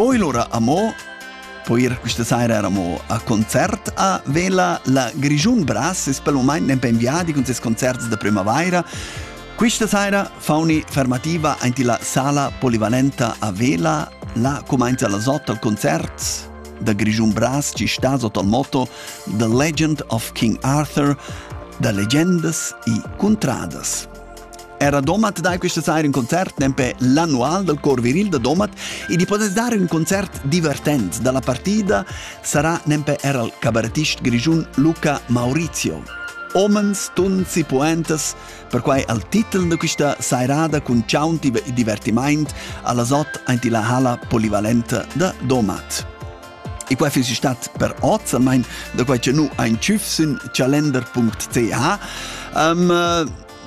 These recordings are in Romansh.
Poi lura amo po ir questa saira amo a concert a Vela la Grigiun Bras es pel moment nempe inviadi con ses concerts da primavaira. Questa saira fauni fermativa aint la sala polivalenta a Vela, la comenza las 8 al concert da Grigiun Bras ci sta sotto al motto The Legend of King Arthur, da legendas e cuntradas. Era Domat dai questa saira un concert nempe l'annual dal cor viril da Domat e di potes dare un concert divertent dalla partida sarà nempe er al cabarettist grigiun Luca Maurizio. Omens, tuns e poetas, perquai al titel da questa sairada cun ciaunti e divertiment alla sot aint la hala polivalenta da Domat. E quai fiss stat per oz, almain da quai che nu ein tschüf sün chalender.ch. Um,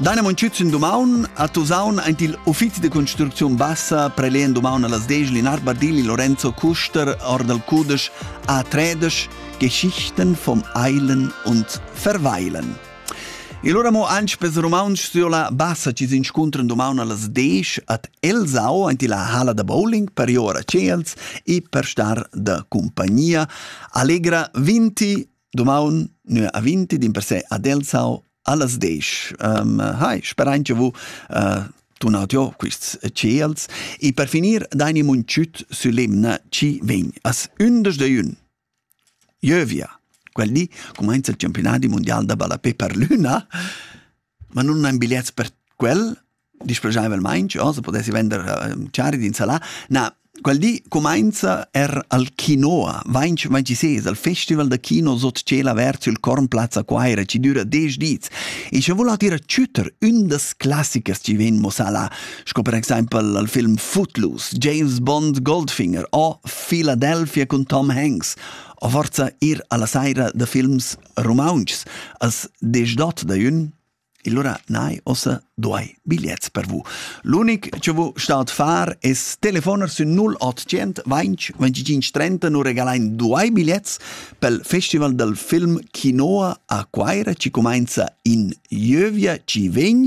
Daina Monchütz dumaun a Tusaun aint il uffizi de construcziun bassa prelehen dumaun a las 10 Linar Bardilli Lorenzo Kuster or dal cudesch A3 Geschichten vom Eilen und Verweilen. E lura mo anc pes rumauntsch sur la bassa chi s'inscuntran dumaun a las desch ad Elsau aint illa hala da bowling per ir ora tschels e per star da cumpagnia. Allegra 20 dumaun nö a 20 dimpersè ad Elsau a las desch. Um, hai, sperain che vu uh, tunat jo quists tschels e per finir daini muntschüt sü l'emna chi vegn as ündesch de jün. Ieuvia, quel di cumainza il campiunadi mundial da ballapè per l'üna, ma nun han bigliets per quel, displaschaivelmaing, o se pudessi vender eh, chari d'insalà. Na, quel di cumainza er al Quinoa, vainch, vainch i ses, al festival da kino sot tschel avert sül Cornplazza Quaira, chi düra desch dis. E scha voul at ir a chüter ün das classichers chi vegn mo sa là, sco per exempel al film Footloose, James Bond Goldfinger o Philadelphia cun Tom Hanks, o forza ir alla saira da films rumauntschs als desch dot da jün, Allora nai ossa duai bigliets per vu. L'unic che vu stat far es telefoner sün 0800 20 25 30 nu regalain duai bigliets pel Festival del Film Quinoa a Quaira ci comenza in Ieuvia ci vegn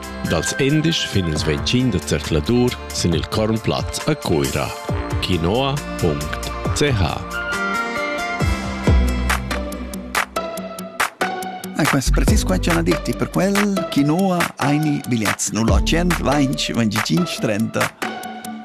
Dals endisch fin ils 25 da zercladur sin il Kornplatz a Cuira. Quinoa.ch Ah, quest precis qua c'è una dirti per quel Quinoa aini bigliets 0800 25 30